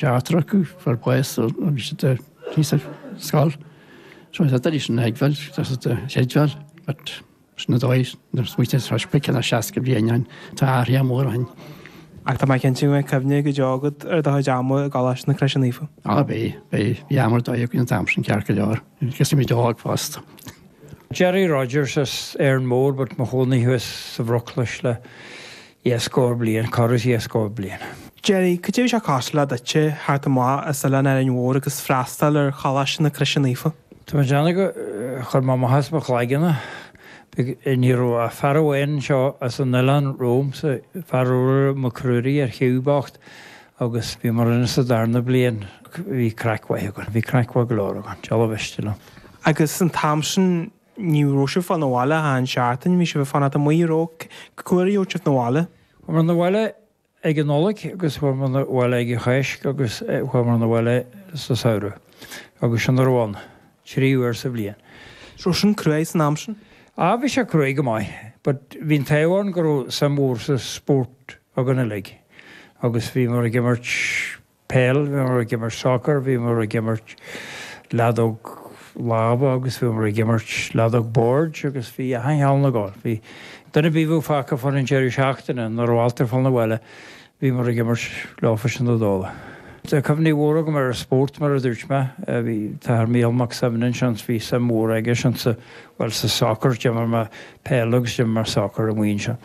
D'eachtraíodh fear baoth agus iad tar éis scoil. Chuaigh siad arís ina oidhbheil agus ina theideal agus sin an dóigh a smaointigh siad freisin. Beidh ceann 60 bliain ann. Tá athruithe móra againn. Ach tá mé cinnte go mbeidh cuimhne go deo agat ar do chuid ama i gColáiste na Croise Naofa. Á beidh. Beidh. Bhí am ar dóigh againn an t-am sin ceart go leor. Thosaímid óg fosta. Gerry Rogers as Árainn Mhór but mo chónaí thuas sa Bhruclais le dhá scór bliain, corradh is dhá scór bliain. Jerry, cad é a bhí sé cosúil le duitse teacht amach as oileán Árainn Mhór agus freastail ar Choláiste na Croise Naofa? Tá mé ag déanamh gur chuir mé amach as mo chloigeann é. Ní raibh ach fear amháin anseo as an oileán romhamsa, Fearghal Mac Ruairí ar shiúl bocht agus bhíomar ann sa darna bliain. Bhí craic mhaith againn, bhí craic mhaith go leor againn, Donald Sweeney liom. Agus an t-am sin Ní raibh sibh fán bhaile achan seachtain, bhí sibh ag fanacht amuigh go gcuirfeadh siad sibh na bhaile. Chuamar na bhaile ag an Nollaig agus chuamar na bhaile ag an Cháisc agus chuamar na bhaile sa samhradh agus sin a raibh ann, trí uair sa bhliain. An raibh sin cruaidh san am sin? Á bhí sé cruaidh go maith but bhí an taobh ann go raibh suim mhór sa sport againn uilig agus bhíomar ag imirt peil, bhíomar ag imirt soccer, bhíomar ag imirt leadóg láimhe agus bhíomar ag imirt leadóg boird agus bhí achan cheann acu. Bhí daoine a bhíodh muid fágtha fán deireadh seachtaine nuair a bhailtear fán bhaile, bhíomar ag imirt leofasan ar ndóigh. Tá cuimhní mhóra agam ar an spórt mar a dúirt mé, bhí an tAthair Mícheál Mac Suibhne ansin, bhí suim mhór aige-sean sa, bhuel sa soccer, d'imir mé, peil agus d'imir mé sacar i mBun an Easa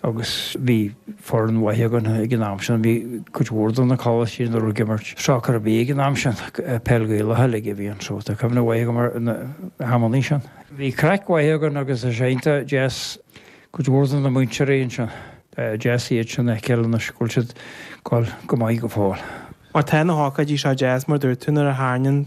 agus bhí foireann mhaith againn ag an am sin. Bhí cuid mhór de na coláistí ní raibh ag imirt sacar ar bith ag an am sin, peil Gaelach uilig a bhí ann so tá cuimhne mhaith agam ar na hamannaí sin. Bhí craic mhaith againn agus is iontach deas cuid mhór de na múinteoirí ansin, deas iad sin a fheiceáil anois go bhfuil siad go maith go fóill. Mar tá na hócáidí seo deas mar dúirt tú nuair a thairning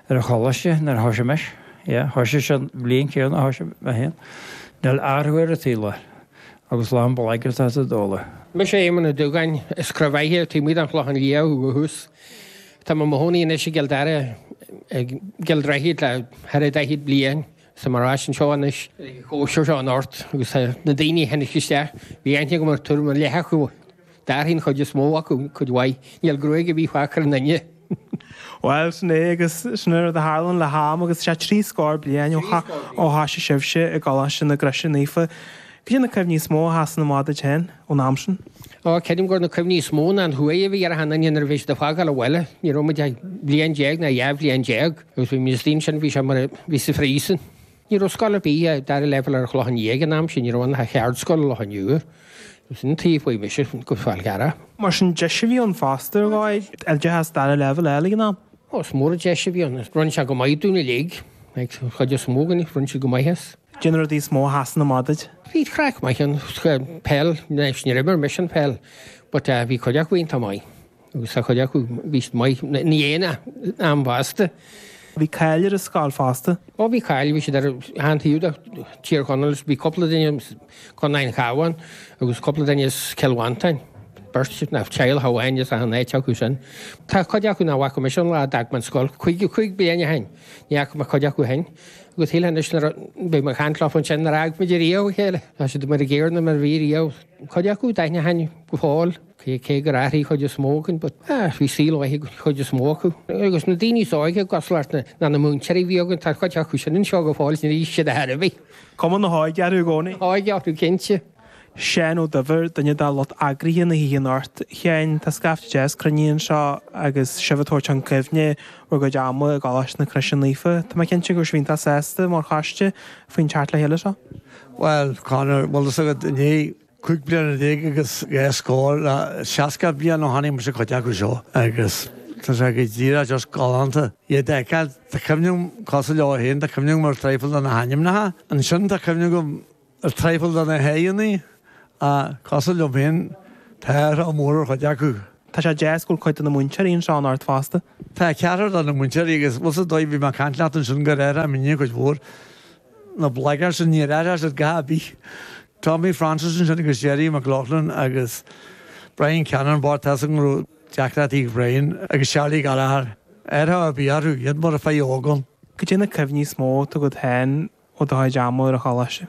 ar an choláiste nuair a thosaigh mise, yeah, thosaigh sé an bhliain chéanna a thosaigh mé féin, níl athrú ar an tsaol agus lán blagairt ar an dóigh sin. Mise Éamon Ó Dúgáin, is as Craobhaigh taobh amuigh den Chlochán Liath ó dhúchas. Tá mé i mo chónaí anois i gCill Dara, i gCill Droichid le thar a daichead bliain. Agus muid anseo anois, i gcóisir seo an Oird, agus na daoine a tháinig isteach, bhí aithne agam ar tuairim ar leith acu, d'athraigh an chuid is mó acu, cuid mhaith, níl gruaig ar bith fágtha ar aon duine. Bhuel, sin é agus sin an rud a tharlaíonn le ham agus is ea trí scór bliain ó thosaigh sibhse i gColáiste na Croise Naofa, cad iad na cuimhní is mó a sheasann amach duit féin ón am sin? Ó, creidim gur na cuimhní is mó ná an chumhaidh a bhí ar achan duine nuair a bhí siad ag fágáil an bhaile, ní raibh muid ach bliain déag ná dhá bhliain déag, Agus bhí mé istigh ansin, bhí sé mar a bhí sa phríosún. Ní raibh scoil ar bith, dara leibhéal ar an Chlochán Liath ag an am sin, ní raibh ann ach ceardscoil i Loch an Iúir. Agus sin an t-ábhar a chuaigh mise, go Fál Carrach. Mar sin, deis a bhí ann fosta ar dhóigh, oideachas dara leibhéal a fháil ag an am? Ó, is mór an deis a bhí ann. Rinne sé go maith dúinn uilig, an chuid is mó againn, rinne siad go maith as. Cé na rudaí is mó a sheasann amach duit? Bhí craic maith ann, peil, anois níor imir mise an pheil but bhí cuid acu iontach maith. Agus tá cuid acu, bhí siad maith, ní aon am bhásta. Bhí cáil ar an scoil fosta. Ó bhí cáil, bhí siad as achan taobh de Thír Chonaill is bhí cúpla duine as Contae an Chabháin agus cúpla duine as Cill Mhantáin, beirt as teaghlach amháin as achan áit acu sin. Tá cuid acu nach bhfaca mise ón lá a d'fhág mé an scoil, caoga cúig bliain ó shin, ní fhaca mé cuid acu sin. Agus shílfeá anois nuair a, bhí mé ag caint leo ansin, nár fhág muid riamh a chéile, tá siad mar an gcéanna mar a bhí riamh. Cuid acu, d'aithin mé go fóill. Cé gur athraigh an chuid is mó againn, athraigh saol mhaith ag cuid is mó acu. Agus na daoine is óige i gcroílár na na múinteoirí a bhí againn, tá cuid acu sin anseo go fóill, níor athraigh siad a dhath ar bith. Cuma na hóige orthu i gcónaí. Na hóige orthu, cinnte. Seán Ó Duibhir, duine de lucht eagraithe na hoíche anocht. A Sheáin, tá scaifte deas cruinnithe anseo agus sibh ag tabhairt chun cuimhne bhur gcuid ama i gColáiste na Croise Naofa. Tá mé cinnte go bhfuil sibh iontach sásta, mar choiste, faoin teacht le chéile seo. Bhuel, Conor, bhfuil fhios agat, i ndiaidh. Cúig bliana déag agus dhá scór, seasca bliain ó chonaic mise cuid acu seo agus tá sé go díreach just galánta iad a fheiceáil. Tá cuid acu cosúil leo féin, tá cuimhne agam ar traidhfil de na hainmneacha. Ansin tá cuimhne agam ar traidhfil de na haghaidheanna, cosúil liom féin, tá athruithe móra ar chuid acu. Tá sé deas go bhfuil cuid de na múinteoirí anseo anocht fosta. Tá ceathrar de na múinteoirí agus bhfuil 's dóigh bhí mé ag caint leat ansin gur athraigh muidinne cuid mhór. Na bligeaird sin níor athraigh siad a dhath ar bith. Tommy Francis ansin agus Gerry McLaughlin agus Brian Cannon, Bartas an ghnó, Jack 'Ratty' Ryan agus Charlie Gallagher. Athrú ar bith orthu, iad mar a bheadh óg ann. Cad é na cuimhní is mó agat féin ó do chuid ama ar an choláiste?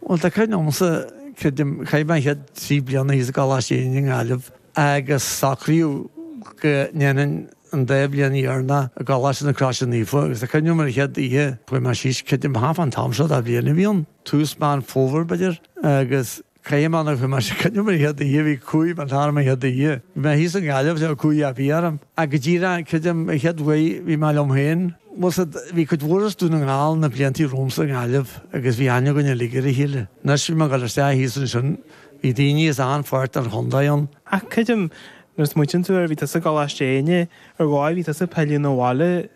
Bhuel, tá cuimhne agamsa, creidim, chaith mé an chéad trí bliana thíos i gColáiste Éinne i nGaillimh agus socraíodh go ndéanfainn an dá bhliain dheireanach i gColáiste na Croise Naofa agus tá cuimhne agam ar an chéad oíche a chuaigh mé síos, creidim thart fán am seo de bhliain a bhí ann. tús Meán Fómhair, b'fhéidir, agus caithim ann ag chuimilt a coinneal mo sheod de dhíth, bhí cumhaidh ban tharm mo sheod de dhíth. Bhí mé thíos i nGaillimh, ní raibh cumhaidh ar bith orm, ach go díreach, creidim, mo sheod bhaoth, bhí mé liom féin. Bhuel, sea, bhí cuid mhór as Dún na nGall na bliantaí romhamsa i nGaillimh agus bhí aithne againn uilig ar a chéile. Anois, bhí mé ag dul isteach thíos ansin, bhí daoiní as achan pháirt den chontae ann. Ach creidim, nuair a smaoitíonn tú air, bhí tusa i gColáiste Éinne, ar ndóigh, bhí tusa ag pilleadh 'na bhaile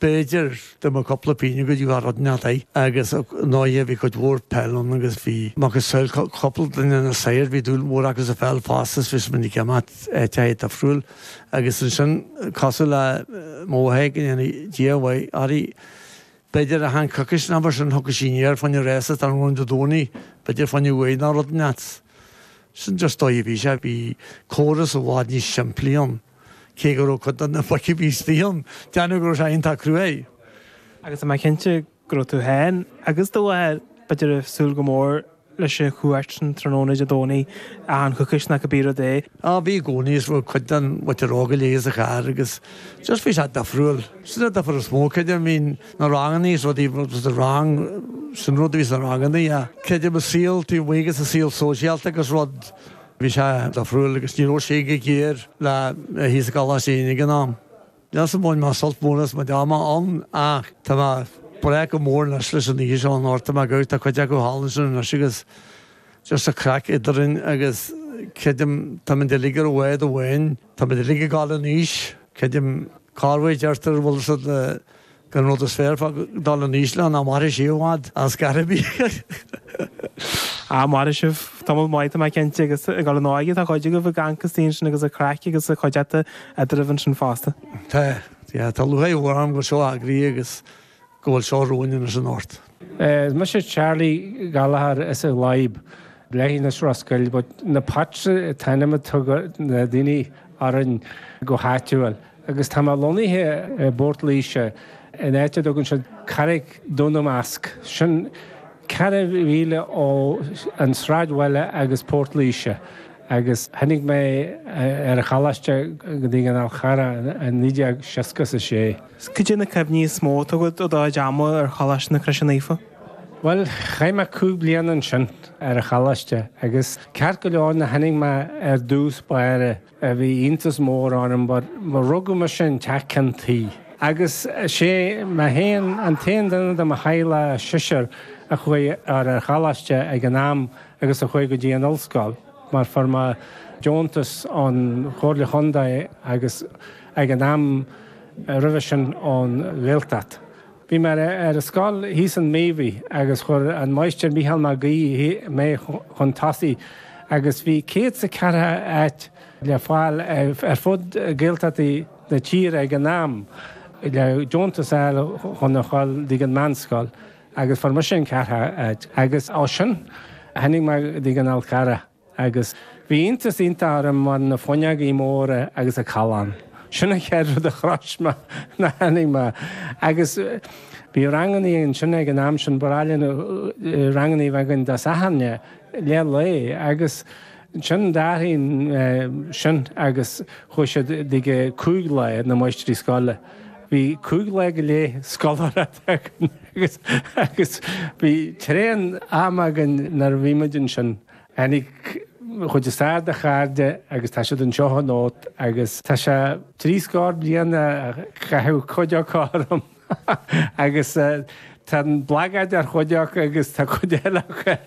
b'fhéidir, de mo chúpla pingin go dtí go raibh neart ann agus ar ndóigh bhí cuid mhór peile ann agus bhí macasamhail cúpla duine na sagairt bhí dúil mhór acu sa pheil fosta is bhí muid minic ag dul áiteacha difriúla agus ansin cosúil le mo mhac go ndéana Dia a mhaith air b'fhéidir achan choicís nó mar sin thiocfadh sí aniar fá choinne réasa tráthnóna Dé Domhnaigh b'fhéidir fá choinne uair nó rud inteacht sin just an dóigh a bhí sé bhí córas i bhfad níos simplí ann. cé go raibh cuid de na boic a bhí istigh ann, déarfadh siad go raibh sé iontach cruaidh. Agus tá mé cinnte go raibh tú féin agus do mháthair, b'fhéidir, ag súil go mór leis an chuairt sin tráthnóna Dé Domhnaigh, achan choicís nó cibé rud é. Á, bhí i gcónaí, is fuair cuid den mhuintir óga léi sa charr agus just bhí sé difriúil. Sin an difear is mó, creidim, bhí na ranganna is rudaí, just an rang, sin an rud a bhí sna ranganna, yeah. Creidim i saol taobh amuigh agus i saol sóisialta agus rud, Bhí sé difriúil agus ní raibh sé róghéar le bheith thíos i gColáiste Éinde ag an am. Níl fhios an bhain mé sult mór as mo chuid ama ann ach tá mé ag dréim go mór anois leis an oíche seo in Ghort a' Choirce, tá cuid acu thall ansin anois agus just an craic eadrainn agus creidim táimid uilig ar bhád amháin, táimid uilig ag dul in aois, creidim, cad é mar a deirtear, an bhfuil 'fhios a'd na. Gurb é an rud is fearr fá dhul in aois nach mairfidh sé i bhfad is gáire a bhí. Á, mhairfidh sibh. Tamall maith, tá mé cinnte, agus ag dul in óige, tá cuid agaibh i gceann na hintinne agus ag craic agus cuideachta eadraibh ansin fosta. Tá, tá lúcháir orainn go bhfuil seo eagraithe agus go bhfuil seo romhainn anois anocht. Is mise Charlie Gallagher as an Ghléib, leithinis Ros Goill but na Pats an t-ainm a thugadh na daoine orainn go háitiúil agus tá mé lonnaithe i bPort Laoise in áit a dtugann siad Carraig Dhún Másc, sin ceithre mhíle ó an sráidbhaile agus Port Laoise agus tháinig mé ar an choláiste go dtí an Fál Carrach i 1966. 'S cad é na cuimhní is mó atá agat ó do chuid ama ar Choláiste na Croise Naofa? Bhuel, chaith mé cúig bliana ansin, ar an choláiste, agus ceart go leor nuair a tháinig mé ar dtús báire bhí iontas mór orm mar rugadh mise in teach ceann tuí agus is mé féin an t-aon duine de mo theaghlach seisear a chuaigh ar an choláiste ag an am agus a chuaigh go dtí an ollscoil mar fuair mé deontas ón Chomhairle Contae agus ag an am roimhe sin ón Ghaeltacht. Bhí mé ar scoil thíos i Míobhaigh agus chuir an máighistir Micheál Mag Aoidh mé chun tosaigh agus bhí céad 's a ceathair áit le fáil ar fud Gaeltachtaí na tíre ag an am le deontas a fháil chun a dhul dtí an meánscoil agus fuair mise an ceathrú áit agus ó sin tháinig mé dtí an Fál Carrach. Agus bhí iontas iontach orm mar na fuinneogaí móra agus an callán. Sin an chéad rud a shrois mé ná tháinig mé. Agus bhí rangannaí ansin ag an am sin, ba ghnách linn rangannaí a bheith againn Dé Sathairne, leath lae. Agus ansin d'athraigh sin agus chuaigh siad go cúig lá, na máistrí scoile. Bhí cúig lá go leith scoláire. againn agus agus bhí tréan am againn nuair a bhí muid ansin. Tháinig an chuid is fearr de chairde agus tá siad anseo anocht agus tá sé trí scór bliain ó casadh cuid acu orm agus tá an bhlagaid ar chuid acu agus tá cuid eile acu